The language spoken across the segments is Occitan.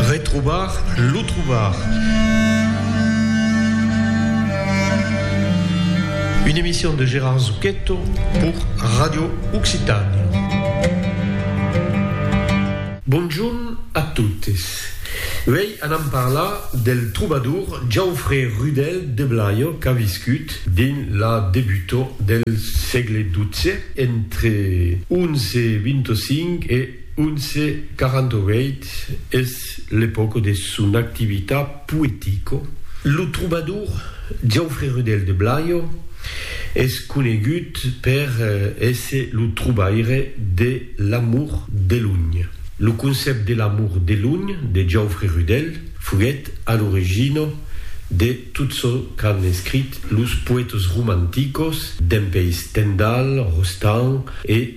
Retrobar lo trobar. Une emission de Gérard Zucchetto pour Radio Occitània. Bonjorn a totes. Uèi anam parlar del trobador Jaufré Rudèl de Blayo qu'a viscut dins la debutor del sègle xii entre 1125 e 1148 es l'epòca de son activita poetico. Lo trobador Jauffre Rudel de Blayo es conegut per èsser lo trobaire de l'Amour de lunh. Lo concèpt de l'Amour de lunh de Jauffre Rudel foguèt a l'origina de tot çò qu'an escrit los poètas romanticos dempuèi Stendhal, Rostand e.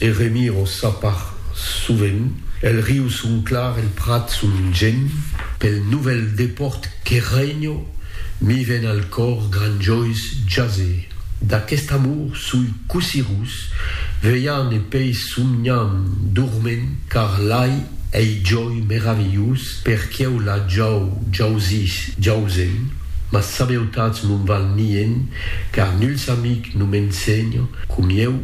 E remiro ça par sovent, el riu son clar, el prat son gent, pel novèl depòrt que renho, mi ven al còr granjois jase d'aquest amor soi cossí rus, velhan e pei somnhan dorment, car l'ai ei jòi meravilhós per quieu la jau jausís jausen, mas sabeutatz non val nient, car nuls amic non m'ensenho comieu.